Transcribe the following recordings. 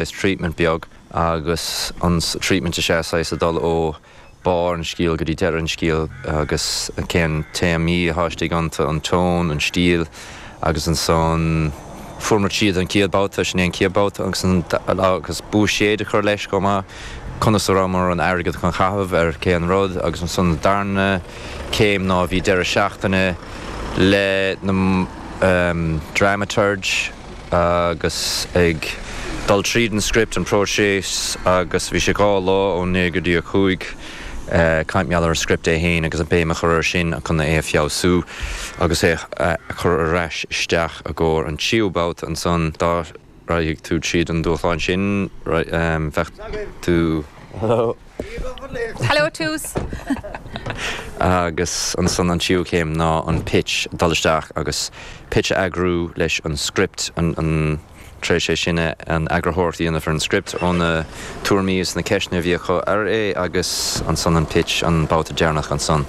Is treatment beag agus an treatment is ea saghas a dul ó barr an scéal go dtí deireadh an scéal agus cén téamaí a tháisti ag iontu, an tone, an stíl agus ansan fuair muid, siad an céad babhta, sin é an céad babhta agus buiséad a chur leis chomh maith, conas a rabhamar an airgead chun chaitheamh ar cén rud agus ansan an darna céim ná bhí deireadh seachtaine leis na dramaturg, Agus ag dul tríd an script, an próiseas, agus bhí sé dhá lá, ó naoi go dtí a cúig, ag caint mar gheall ar an script é féin agus an béim a chur air sin chun é a feabhsú agus é a chur ar ais isteach i gcomhair an tríú babhta. Ansan dá raghadh tú tríd an dúshlán sin, bheadh tú. Hello Toose! Agus ansan an tríú céim ná an pitch, dul isteach agus pitch a eagrú leis an script, tar éis é sin an eagarthóireacht a dhéanamh ar an script ó na tuairimí is na ceisteanna a bhí acu ar é agus ansan an pitch an babhta deireanach ansan.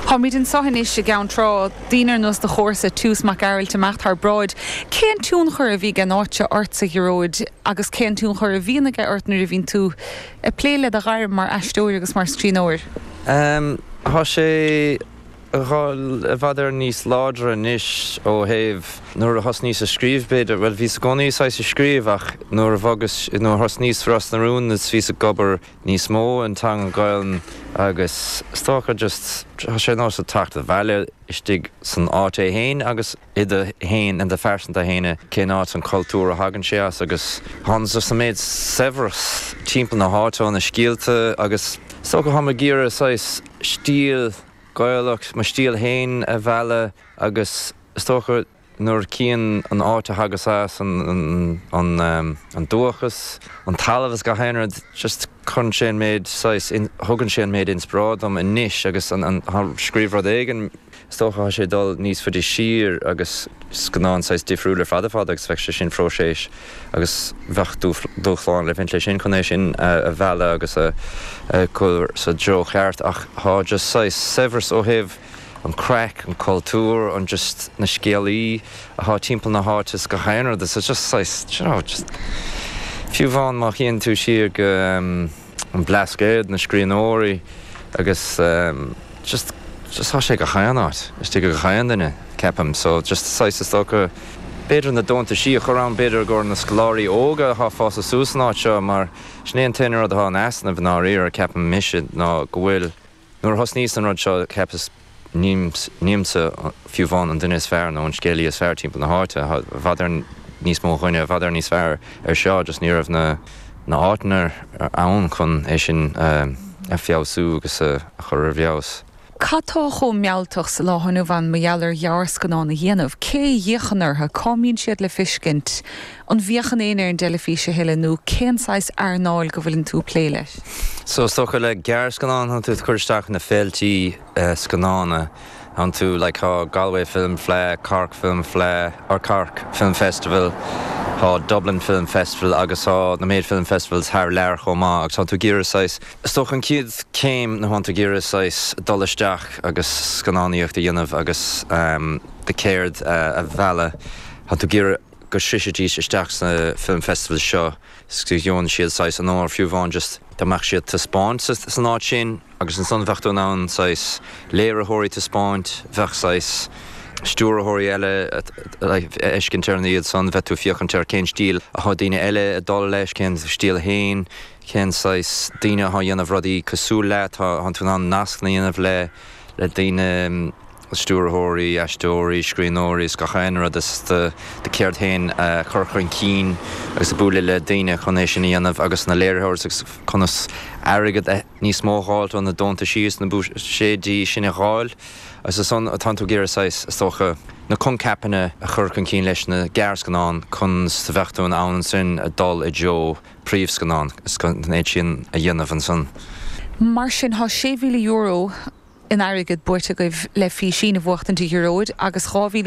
Táimid anseo anois i gCeann Trá, daoine ar nós do chomharsa Toose Mac Gearailt ag imeacht thar bráid. Cén tionchar a bhí ag an áit seo ortsa, a Ghearóid, agus cén tionchar a bhíonn aige ort nuair a bhíonn tú. Ag plé le do ghairm mar aisteoir agus mar scríbhneoir. Tá sé i bhfad Éireann níos láidre anois ó thaobh, nuair a thosnaíos ag scríobh b'fhéidir, bhuel bhíos i gcónaí saghas ag scríobh ach nuair a bhogas, nuair a thosnaíos i Ros na Rún is bhíos ag obair níos mó an teanga Gaolainn agus is dócha just tá sé nós a theacht abhaile istigh san áit é fhéin agus i do féin, in do phearsanta fhéin, i cén áit san cultúr a thagann sé as agus tháinig just an méid saibhreas timpeall na háite ó na scéalta agus is dócha táim ag iarraidh saghas stíl Gaelach, mo stíl fhéin a mhealladh agus is dócha nuair a chím an áit a thagas as, an an dúchas, an talamh is gach aon rud, just cuireann sé an méid saghas, thugann sé an méid inspioráid dom anois agus scríobh rud éigin. Is dócha tá sé ag dul níos faide siar agus scannán saghas difriúil ar fad ar fad agus bheadh sé sin próiseas agus bheadh dúshláin le baint leis sin chun é sin a mhealladh agus a chur sa dtreo cheart ach tá just saghas saibhreas ó thaobh an craic, an cultúr, an just na scéalaithe atá timpeall na háite is gach aon rud is just saghas d'you know just fiú amháin má théann tú siar go. an Blascaod, na scríbhneoirí agus just just tá sé gach aon áit is tuigeann gach aon duine ceapaim so just saghas is dócha b'fhéidir na deontaisí a chur ann b'fhéidir i gcomhair na scoláirí óga athá fásta suas san áit seo mar sin é an t-aon rud athá in easnamh i ndáiríre ceapaim mise ná go bhfuil Nuair a thosnaíos ar an rud seo, cheapas, nílimse fiú amháin an duine is fearr nó an scéalaí is fearr timpeall na háite. Bhíodar níos mó daoine a bhíodar níos fearr ar seo, just ní raibh na háiteanna ann chun é sin a fheabhsú agus a chur ar feabhas. Cad tá chomh mealltach sa lá inniu ann mar gheall ar ghearrscannán a dhéanamh? Cé a fhéachann orthu? Cá mbíonn siad le feiscint? An bhféachann éinne ar an dteilifís a thuilleadh nó cén saghas earnáil go bhfuileann tú ag plé leis? So is dócha le gearrscannán tá tú ag cur isteach sna féilte scannán tánn tú like tá Galway Film Fleadh, Cork Film Fleadh, or Cork Film Festival, tá Dublin Film Festival agus tá na méid film festivals thar lear chomh maith agus tá tú ag iarraidh saghas, is dócha an chéad céim nó tá tú ag iarraidh saghas dul isteach agus scannánaíocht a dhéanamh agus do cheird a mhealladh, tá tú ag iarraidh. go sroichfidís isteach sna film festivals seo is go bhfaigheann siad saghas onóir fiú amháin just dá mbeadh siad taispeáint san áit sin agus ansan bheadh tú in ann saghas léiritheoirí taispeáint, bheadh saghas stiúrthóirí eile like a fheiscint ar na hiad san, bheadh tú féachaint ar cén stíl atá daoine eile ag dul leis, cén stíl féin, cén saghas daoine atá ag déanamh rudaí cosúil leat, tá tú in ann nascanna a dhéanamh le le daoine. stiúrthóirí, aisteoirí, scríbhneoirí is gach aon rud is do do cheird féin a chur chun cinn agus bualadh le daoine chun é sin a dhéanamh agus na léiritheoirí agus conas airgead níos mó a dh'fháil, tá na deontaisí is na buiséidí sin a dh'fháil agus ansan tá tú ag iarraidh saghas is dócha na conceapanna a chur chun cinn leis na gearrscannáin chun is go mbeadh tú in ann ansin a dhul i dtreo príomhscannán is chun é sin a dhéanamh ansan. Mar sin tá sé mhíle euro in airgead buaite agaibh le Físín a bhuachtaint a Ghearóid, agus €2,000